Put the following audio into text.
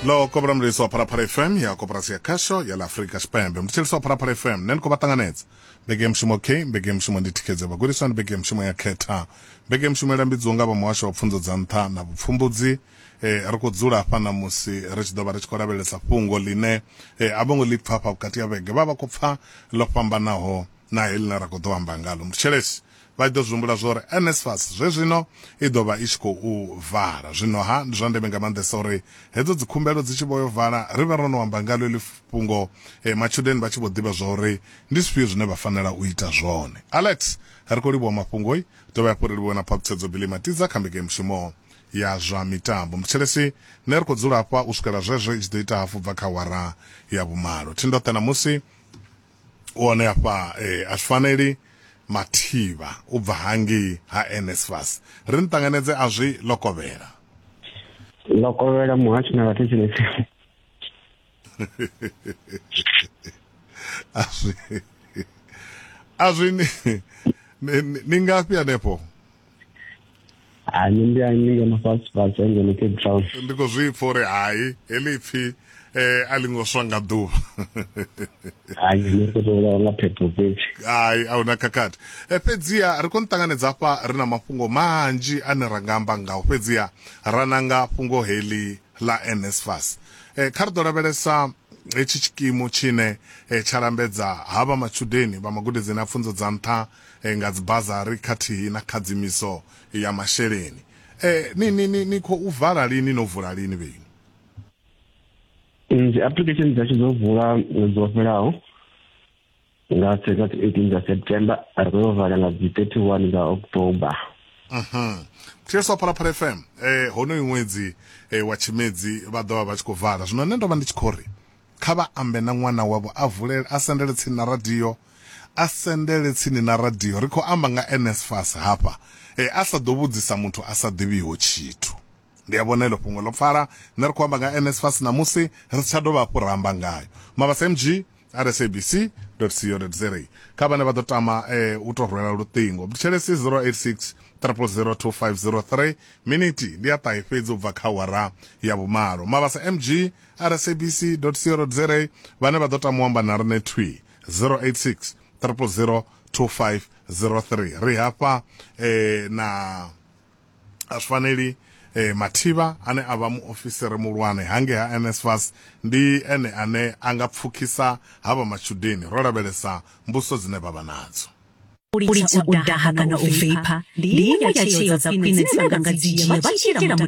lo kobra mlisi wa phalaphala fm ya koporasi ya khasho ya la afrika tshipembe mutshilisi wa phalaphala fm ne ni khou vha ṱanganedza mbeke ya mushumo k mbeke ya mushumo ndi thikhedzo ya vhagudiswa ndi mbeke ya mushumo ya khetha mbeke ya mushumo ilambidziwa nga vha muhasho wa pfunzo dza nṱha na vhupfumbudzi eh, ri khou dzula hafha na musi ri tshi ḓo vha ri tshi khou lavhelesa fhungo ḽine eh, a vho ngo ḽi pfa hafha vhukati ya vhege vha vha khou pfa ḽo fhambanaho na heḽi na ra khou ḓo amba ngalo mutshilisi Vha ḓo zwi humbula zwa uri NSFAS zwezwino i ḓo vha i tshi khou vala. Zwino-ha, ndi zwa ndeme nga maanḓesa uri hedzo dzikhumbelo dzi tshi vho yo vala, ri vhe ro no amba ngaḽo heḽi fhungo, matshudeni vha tshi vho ḓivha zwa uri ndi zwifhio zwine vha fanela u ita zwone. Alex, Ri khou livhuwa mafhungo. Dovhe hafhu ri livhuwe na phaṱhutshedzo Billy Matiza kha mbekenyamushumo ya zwa mitambo. Muthetshelesi, Nṋe ri khou dzula hafha u swikela zwezwo i tshi ḓo ita hafu bva kha awara ya vhumalo. Thi ndoṱhe ṋamusi. u hone afha eh, a zwi faneli mathivha u bva hangei ha nsfas ri ni ṱanganedze a zwi lokovhela lokovhela muhasho na vhathetshelesi a zwi a zwi ni- ni- ni- ni ngafhi hanefho ani ndi ani ngeno fhasi fhasi ngeno cape town ndi khou zwi pfa uri hai heḽi pfi eh a lingo swa nga ḓuvha hai ni khou tou vha nga phepho fhedzi hai a huna khakhathi eh, fhedziha ri khou ni ṱanganedza hafha ri na mafhungo manzhi ane ra nga amba ngao fhedziha ra nanga fhungo heḽi ḽa nsfas eh, kha ri ḓo lavhelesa hetshi tshikimu tshine eh, tsha lambedza havha matshudeni vha magudedzini a pfunzo dza nṱha nga dzibazari khathihi na khadzimiso ya masheleni. Ni, ni, ni, ni khou vala lini? No vula lini vheiṅwe? Dzi application dzashu dzo vula ṅwedzi wo fhelaho nga dzi 18 dza September, ri khou yo vala nga dzi 31 dza October. Mhm. Thetshelesa wa Phalaphala FM, eh, honoyu ṅwedzi eh, wa Tshimedzi vha ḓo vha vha tshi khou vala. Zwino nṋe ndo vha ndi tshi khou ri, Kha vha ambe na ṅwana wavho a vulele, a sendele tsini na radio, a sendele tsini na radio. Ri khou amba nga NSFAS hafha. Ee, a sa ḓo vhudzisa muthu a sa ḓivhiho tshithu. Ndi a vhona heḽo fhungo ḽo pfala. Nṋe ri khou amba nga NSFAS ṋamusi, ri si tsha dovha hafhu ra amba ngayo. Mabasa-MG at sabc dot co dot za. Kha vhane vha ḓo tama u tou rwela luṱingo, Buthelezi 086 000 2503, minithi ndi ya ṱahe fhedzi u bva kha awara ya vhumalo. Mabasa-MG. sabc.co.za vhane vha ḓo tama u amba na riṋe thwi 086 000 2503 ri hafha eh, na Asfaneli eh, Mathiba ane a vha muofisiri mulwane hange ha NSFAS ndi ene ane a nga pfukhisa ha vha matshudeni ro lavhelesa mbuso dzine vha vha nadzo u lidza u daha kana u veipha ndi iṅwe ya tsheo dza khwine dzine vha nga dzi dzhia vha tshi itela